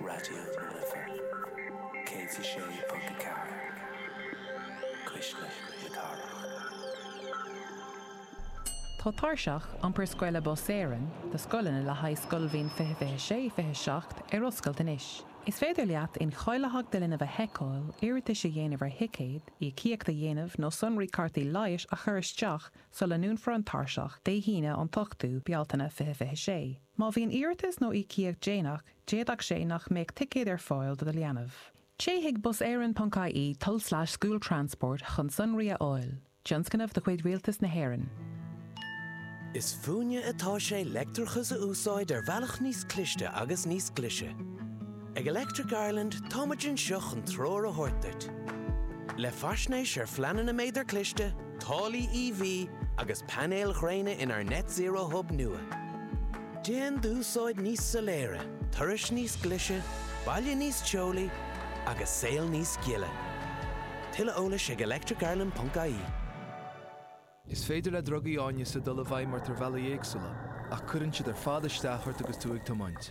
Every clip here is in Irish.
Raidió na Life 106.4 Cuisle na Cathrach. Tá Tairseach Iompair Scoile Bus Éireann do scoileanna le haghaidh scoilbhliain 2026, 27 ar oscailt anois. Is féidir leat incháilitheacht do linbh a sheiceáil, iarratais a dhéanamh ar thicéid, íocaíocht a dhéanamh nó sonraí cártaí leighis a chur isteach sula ndúnfar an tairseach Dé hAoine an 8ú Bealtaine 2026. Má bhíonn iarratas nó íocaíocht déanach, d'fhéadfadh sé nach mbeadh ticéad ar fáil do do leanbh. Téigh chuig buseireann ponc ie tulslais school transport chun sonraí a fháil. Tionscnamh de chuid Rialtas na hÉireann. Is fúinne atá sé leictreachas a úsáid ar bhealach níos cliste agus níos glise. Ag Electric Ireland táimid anseo chun treoir a thabhairt duit. Le faisnéis ar phleananna méadar cliste, Táillí EV agus painéil ghréine inár Net Zero Hub nua. Déan d'úsáid níos soiléire, turais níos glise, baile níos teolaí agus saol níos gile. Tuilleadh eolais ag electricireland.ie. Is féidir le drugaí áineasa dul i bhfeidhm ort ar bhealaí éagsúla, ach cuireann siad ar fad isteach ort agus tú ag tiomáint.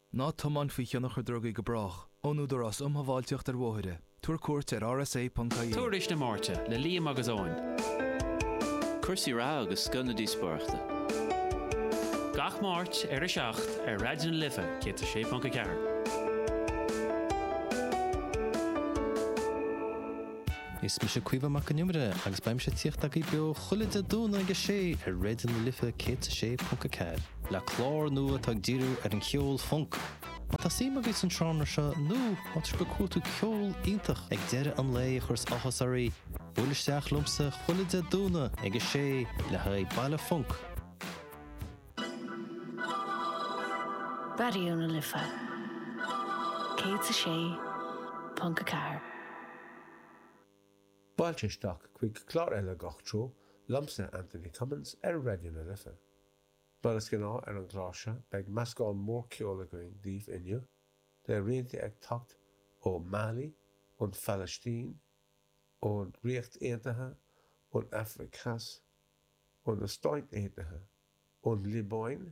Ná tiomáin faoi thionchar drugaí go brách, ón Údarás Um Shábháilteacht ar Bhóithre, tabhair cuairt ar rsa.ie. Tuairisc na Máirte le Liam agus Eoin. Cúrsaí reatha agus scoth na díospóireachta. Gach Máirt ar a 7 ar Raidió na Life 106.4. Is mise Caoimhe Mac an Iomaire agus beidh mise ag tíocht agaibh beo chuile Dé Domhnaigh ag a sé ar Raidió na Life 106.4, le clár nua atá ag díriú ar an cheol func. Má tá suim agaibh san seánra seo nó má tá sibh ag cuartú ceol iontach ag deireadh an lae a chuireas áthas oraibh, buailigí isteach liomsa chuile Dé Domhnaigh ag a sé le haghaidh Baile Func. Raidió na Life 106.4. Fáilte isteach chuig clár eile Gach Treo liomsa, Anthony Cummins, ar Raidió na Life. Mar is gnáth ar an gclár seo beidh meascán mór ceoil againn daoibh inniu, le rianta ag teacht ó Mali, ón Phalaistín, ón Ríocht Aontaithe, ón Afraic Theas, ó na Stáit Aontaithe, ón Liobáin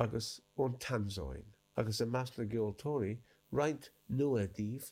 agus ón Tansáin, agus i measc na gceoltóirí, roinnt nua daoibh,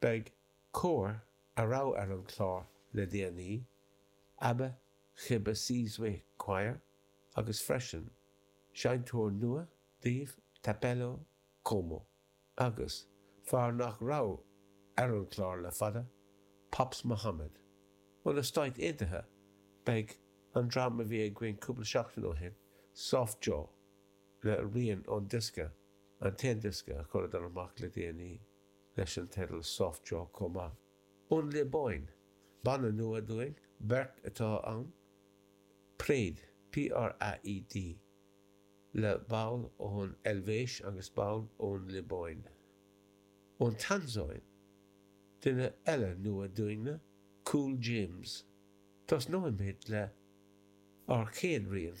Beidh Comhar, a raibh ar an chlár le déanaí, Abba Chibba, Sizwe Choir agus freisin seinnteoir nua daoibh Thapelo Khomo agus fear nach raibh ar an chlár le fada, Pops Mohamed. Ó na Stáit Aontaithe beidh an dream a bhí againn cúpla seachtain ó shin, Soft Joe, le rian ón diosca, an t-aon diosca a chuireadar amach le déanaí. leis an teideal Soft Joe chomh maith. Ón Liobáin, banna nua dúinn, beirt atá ann, Praed, P-r-a-e-d, le ball ón Eilvéis agus ball ón Liobáin. Ón Tansáin, duine eile nua dúinne, Cool James. Tosnóimid le ár chéad rian.